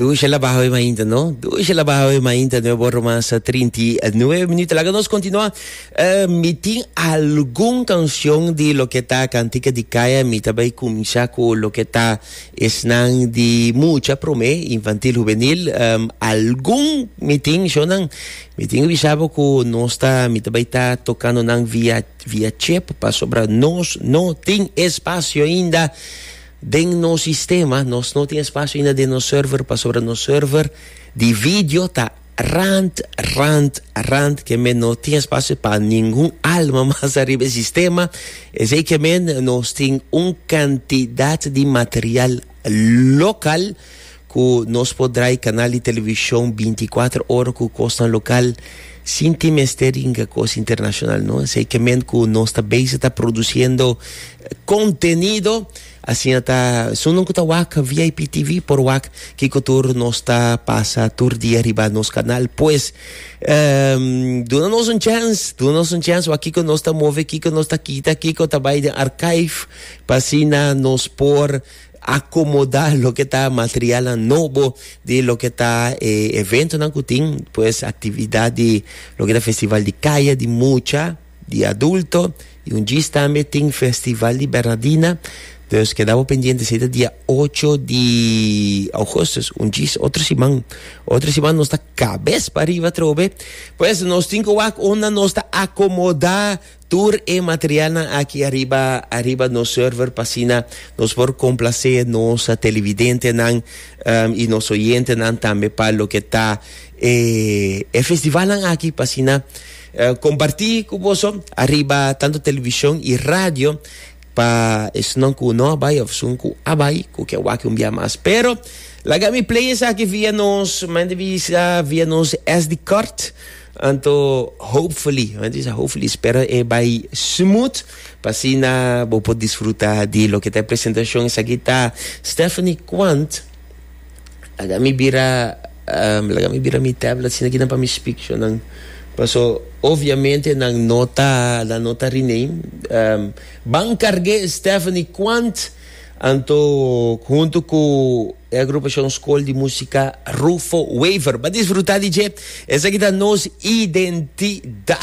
Dushi la bajo ima inta, no? Dushi la bajo ima inta, no bo romansa 39 minutos. Laga nos continua. Uh, mi tin algun canción di lo que ta cantica di kaya. Mi tabay kumisa ku lo que ta esnan di mucha prome, infantil, juvenil. Um, algun mi tin, shonan, mi tin bisabo ku nos ta, mi tabay ta tocando nan via, via chip, pasobra nos no tin espacio inda. Den nos sistema nos no tin espasio ainda den nos server pasobra nos server di video ta rant rant rant ke men no tin espasio pa ningun alma mas ariba e sistema esei ke men nos tin un kantidat di material lokal Ku nos por drai kanal di televishon binti kuater ora ku kosnan lokal sin tin mester ringa kos internashonal no. Esei ke men ku nos ta beisik ta produsiendo kontenido. Asina ta sunnan ku ta wak VIP TV por wak kiko tur nos ta pasa tur dia riba nos kanal. Pues duna nos un chèns, duna nos un chèns wak kiko nos ta move, kiko nos ta kita, kiko ta bai den archive pa asina nos por Akomodá loke ta materialnan nobo di loke ta e eventonan ku tin, pues aktividat di loke ta festival di kaya di mucha, di adulto i un djis tambe tin festival di Bernadina. Dus keda bo pendiente si ta dia ocho di Augustus, un djis otro siman. Otro siman nos ta kabes pariba atrobe. Pues nos tin ku wak unda nos ta akomodá. Tur e materialnan aki ariba ariba nos server pa asina nos por complacé nos televidentenan i nos oyentenan tambe pa loke ta e e festivalnan aki pa asina comparti cu boso ariba tanto television i radio pa esun cu no a bay of esun cu a bay cu ke wak un bia mas pero laga mi play esaki via nos manda visa via nos SD card. Anto hopefully, nan di sa hopefully, spera e bai smooth pa asina bo por disfruta di loke ta e presentacion. Esaki ta Stephanie Kwant. Laga mi bira, um, laga mi bira mi tablet, asina kinan pa mi spictio nan. Paso, obviamente nan no ta, nan no ta rename. Um, ban carge Stephanie Kwant. Anto huntu ku e agrupashon Skol di Músika Rufo Wever. Ba disfrutá di dje. Esaki ta nos identidat.